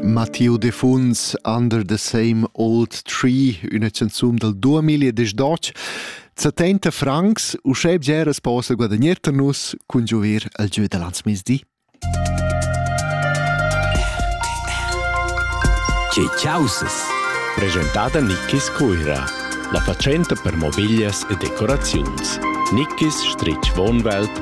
Mattiu Defuns Under the Same Old Tree, üna canzun dal 2018. 70 francs, uschè bger as possa guadagnar tar nus cun giuver al giö da lanzmezdi. Che chausas! Presentata Nickis Cuira, la fatschenta per mobiglias e decoraziuns. Nickis Strich Wohnwelt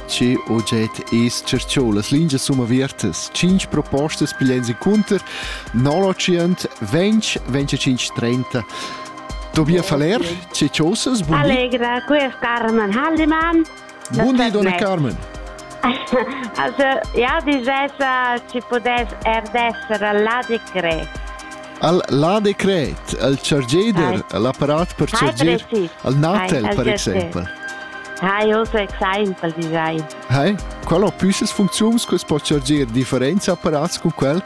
Che oget es cerchou las lingias sumaviertas? Cinch propostas piglian incunter 900 20 25 30 Tobias Faller, che chosas? Buon Allegra, qui es Carmen Haldemann. Buon di, Donna Carmen. also, ja, die Jessa ci podes erdessere la di cre. al la decret, al chargeder, al apparat per charger, al natel per exempel. Hai also example design. Hai, qual ho püssas funcziuns che po charger differents apparats con quel?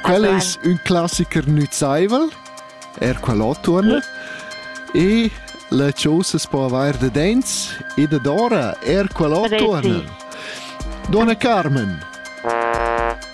Quel es ün classiker nüzaivel, er qual ho turn. E la chose es po avair da dents e da dora, er qual ho turn. Donna Carmen.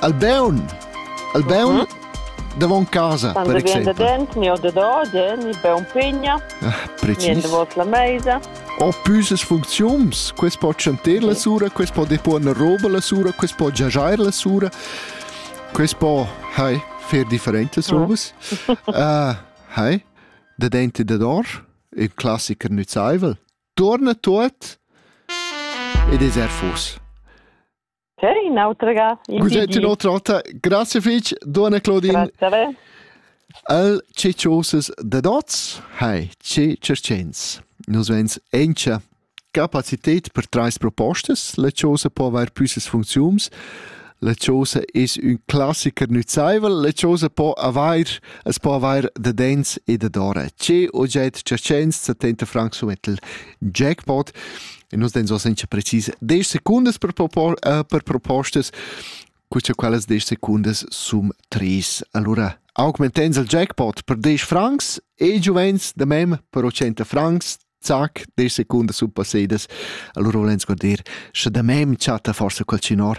Albeun. Albeun mm davon casa, Quando per exempel. Quando viene dentro, mi ho da mi beun pigna, mi davos la meisa. Ho püses funziums, quest po chanter la sura, quest po deponer roba la sura, quest po giagiar la sura, quest po, hai, fer differentes mm. robes. uh, hai, da dente da dor, il classiker nützaivel, torna tot ed es er fus. C'è un'altra ga? Cos'è un'altra volta? Grazie fitch, Donna Claudine. Grazie. El ce chosas da dots? Hai, ce cercens. Nus vens encha capacitet per trais propostas. La chosa po avair püssas funcziums. La chosa es ün classiker nüzaivel. La chosa po avair, es po avair da dens e da dora. Ce oget cercens, 70 francs sumettel jackpot. e nus dein so senza precis 10 secundas per, propo uh, per propostas queste quelles 10 sekundes sum 3 allora augmentens il jackpot per 10 francs e giovens de mem per 80 francs zac 10 sekunde sum passedas allora volens guarder sche da mem chatta forse quel cinor